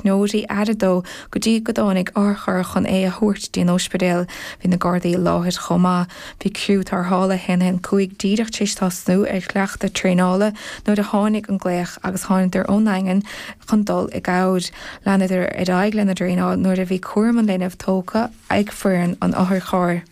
agus tugadh aire dó go dtí go dtáinig otharcharr chun é a thabhairt dtí an óispidéal. Bhí na Gardaí i láthair chomh maith. Bhí criú tarrthála 115 díreach tar éis tosnú ar chleachtadh traenála nuair a tháinig an glaoch agus thánadar ón nDaingean chun dul i gcabhair. Leanadar ar aghaidh lena dtraenáil nuair a bhí cúram an linbh tógtha ag foireann an otharchairr.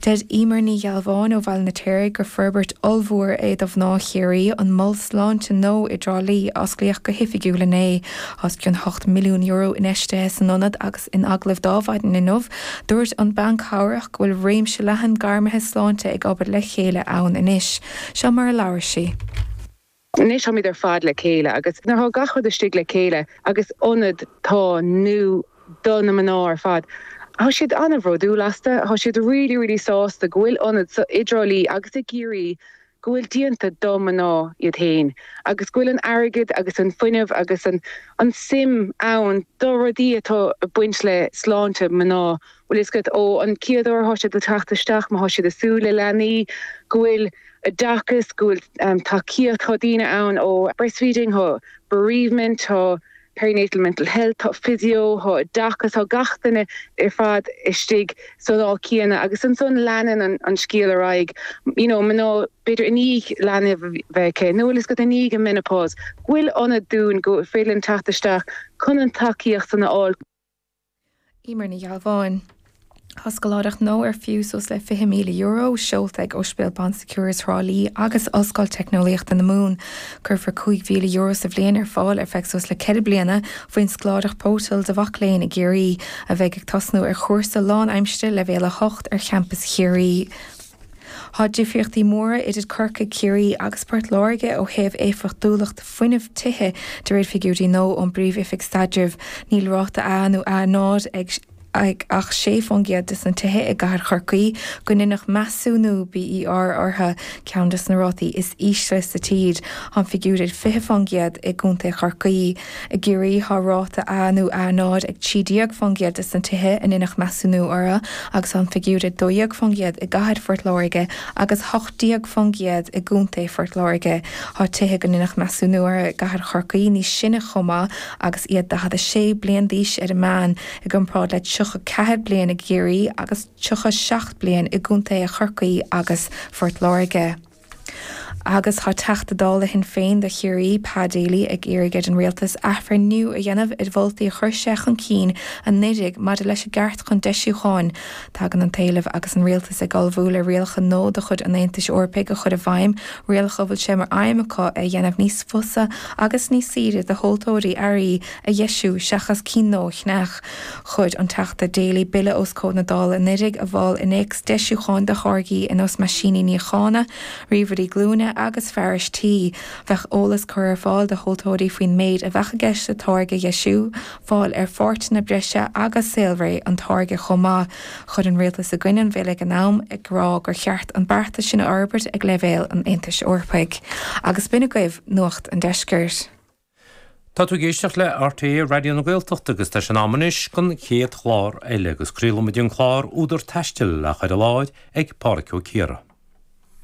Deir Emer Ní Ghealbháin ó Bhaile na Tíre gur forbairt ollmhór é do mhná Chiarraí an mol sláinte nua i dTrá Lí a osclaíodh go hoifigiúil inné. Tá os cionn €8 milliún infheistithe san ionad agus in agallamh ar maidin inniu, dúirt an bhean chabhartha go bhfuil réimse leathan gairmithe sláinte ag obair le chéile ann anois. Seo mar a labhair sí. Anois táimid ar fad le chéile agus nuair atá gach rud istigh le chéile agus ionad atá nua do na mná ar fad tá siad an-bhródúil as. Tá siad really, really sásta go bhfuil ionad i dTrá Lí agus i gCiarraí go bhfuil déanta do na mná iad féin agus go bhfuil an airgead agus an fuinneamh agus an an suim ann do rudaí atá ag baint le sláinte mná. Bhfuil a fhios agat ó an chéad uair atá siad ag teacht isteach, má tá siad ag súil le leanaí, go bhfuil oideachas, go bhfuil tacaíocht, tá daoine ann ó breastfeeding, tá bereavement, tá perinatal mental health, tá physio, tá oideachas, tá gach duine ar fad istigh san áit céanna agus ansan leanann an scéal ar aghaidh. You know, mná, b'fhéidir i ndiaidh leanbh a bheith acu nó bhfuil a fhios agat i ndiaidh an menopause, go bhfuil ionad dúinn go bhféidir linn teacht isteach chun an tacaíocht san a fháil. Emer Ní Ghealbháin, Tá scoláireacht nua ar fiú suas le €20,000 seolta ag Ospidéal Bon Secours Thrá Lí agus Ollscoil Teicneolaíochta na Mumhan. Cuirfear €5,000 sa bhliain ar fáil ar feadh suas le ceithre bliana faoin scoláireacht Bótall do mhac léinn i gCiarraí, a bheidh ag tosnú ar chúrsa lánaimsire leibhéal 8 ar champas Chiarraí. Tá difríochtaí móra idir Corcaigh, Ciarraí agus Port Láirge ó thaobh éifeachtúlacht fuinnimh tithe de réir figiúirí nua ón bPríomh-Oifig Staidrimh. Níl ráta A nó A0 ag ach 6 fán gcéad des na tithe i gcathair Chorcaí go ndeineadh measúnú BER orthu, ceann des na rátaí is ísle sa tír. Tá an figiúr 20 fán gcéad i gContae Chorcaí. I gCiarraí thá ráta A nó A0 ag 13% des na tithe a ndeineadh measúnú orthu agus thá an figiúr 12% i gcathair Phort Láirge agus 18% i gContae Phort Láirge. Thá tithe go ndeineadh measúnú orthu i gcathair Chorcaí níos sine chomh maith agus iad 46 bliain d'aois ar an meán i gcomparáid le 34 bliain i gCiarraí agus 37 bliain i gContaetha Chorcaí agus Phort Láirge. Agus tá Teachta Dála Shinn Féin do Chiarraí, Pa Daly, ag iarraidh ar an Rialtas athbhreithniú a dhéanamh ar mholtaí a chuir sé chun cinn anuraidh maidir leis an gceart chun deisiúcháin, tagann an t-éileamh agus an Rialtas ag ullmhú le rialacha nua de chuid an Aontais Eorpaigh a chur i bhfeidhm, rialacha a bhfuil sé mar aidhm acu é a dhéanamh níos fusa agus níos saoire do thomhaltóirí earraí a dheisiú seachas cinn nua a cheannach. Chuir an Teachta Daly bille os comhair na Dála anuraidh a mhol innéacs deisiúcháin do tháirgí ar nós meaisíní níochána, ríomhairí glúine agus fearais tí. Bheadh eolas curtha ar fáil do thomhaltóirí faoin méid a bheadh i gceist le táirge a dheisiú, fáil ar pháirteanna breise agus saolré an táirge chomh maith. Chuir an Rialtas i gcoinne an bhille ag an am, ag rá gur cheart an beartas sin a fhorbairt ag leibhéal an Aontais Eorpaigh. Agus b'in agaibh Nuacht an Deiscirt. Tá tú ag éisteacht le RTÉ Raidió na Gaeltachta agus tá sé in am anois don chéad chlár eile agus craolfaimid an clár Údar Taistil, á chur i láthair, ag Pádhraic Ó Ciardha.